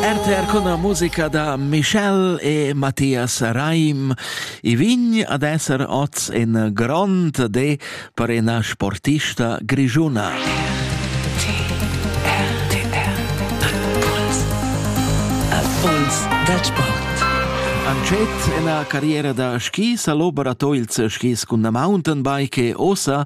RTR con la musica da Michel e Matthias Reim. I vign ad esser oz in grond de per ina sportista grigiuna. Puls da sport. Ancet ina carriera da skis a l'Ober a Toils skis cun la mountainbike e ossa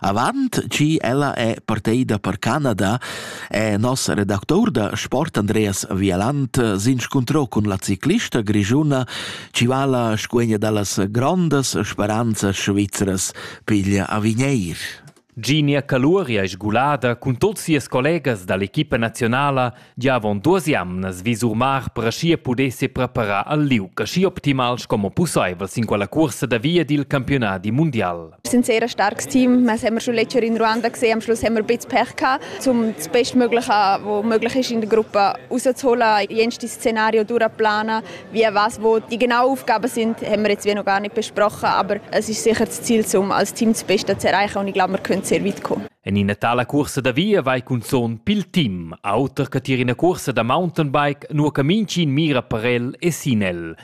Avant chi ella è parteida per Canada è nos redactur da sport Andreas Vialant s'inscuntrò cun la ciclista grischuna chi vala scuegna da las grondas speranzas svizras piglia a Vigneir. Ginia Caluori ais sgulada cun tuot sias collegas da l'equipa nazionala Gia avon duas jamnas vi Surmar per aschia puder sepreparar al liug aschi optimal sco pusseivel sin quella cursa da via dil campiunadi mundial. Wir sind sehr ein starkes Team. Wir haben schon letztes Jahr in Ruanda gesehen, am Schluss haben wir ein bisschen Pech gehabt, um das Bestmögliche, was möglich ist in der Gruppe, rauszuholen, jenste Szenario durchzuplanen. Wie was, wo die genauen Aufgaben sind, haben wir jetzt wie noch gar nicht besprochen, aber es ist sicher das Ziel, um als Team das Beste zu erreichen und ich glaube, wir können sehr weit kommen. En ina tala cursa da via vai cunzon pil team. Auter che tier ina cuorsa da mountainbike, nua che mintgin mira per el e sin el.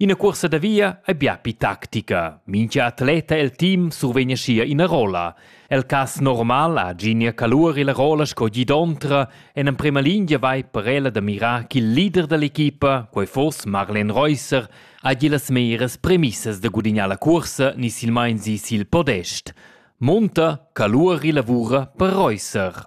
Ina cuorsa da via ei bia pi tactica. Mintga atleta el team survegn aschia ina rolla. El cass normal ha Ginia Calur la rolla sco gidontra e en emprema lingia vai per ella da mirar ch'il leader dall'equipa, quei foss Marlen Reusser, hagi las meras premissas da gudignar la cuorsa ni silmein si sil podest. Munta Calur lavura per Reusser.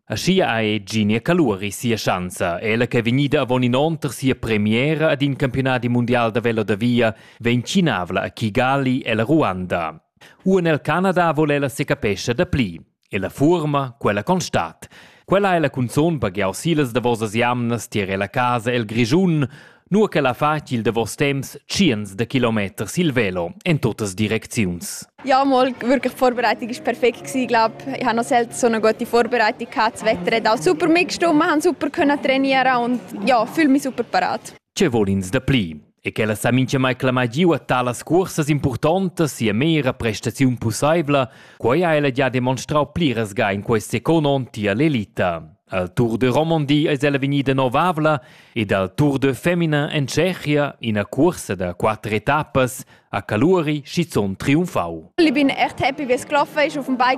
Aschia ha Eginia Caluri sia schanza. Ella ch'ei vegnida avon in onn tar sia premiera ad in campionadi mundial da velo da via vegn tschinavla a Kigali ella Ruanda. Uan el Canada vol ella secapescha dapli. E la fuorma, quella constat. Quella è la cunzon baghiau silas davosas jamnas tier ella casa el Grischun, nua ch'el ha fatg il davos temps tschients da kilometers il velo en tuttas direcziuns. Ja, mal wirklich die Vorbereitung war perfekt gewesen, glaube. Ich habe noch selten so eine gute Vorbereitung gehabt. Das Wetter hat auch super mitgestimmt, wir haben super können trainieren und ja, fühle mich super parat. Ce vuol ins da pli? E che la sa mai clamà giu a talas cursas importantas sia mera prestaziun pussaivla, quai ha ella già demonstrau pliras ga in quest second onn tier l'elita. Al Tour de Romandie es ella vegnida novavla ed al Tour de Femina en Tschechia ina cuorsa da quatter etappas a Caluri schizunt triumfau. Ich bin echt happy, wie es gelaufen ist. Auf dem Bike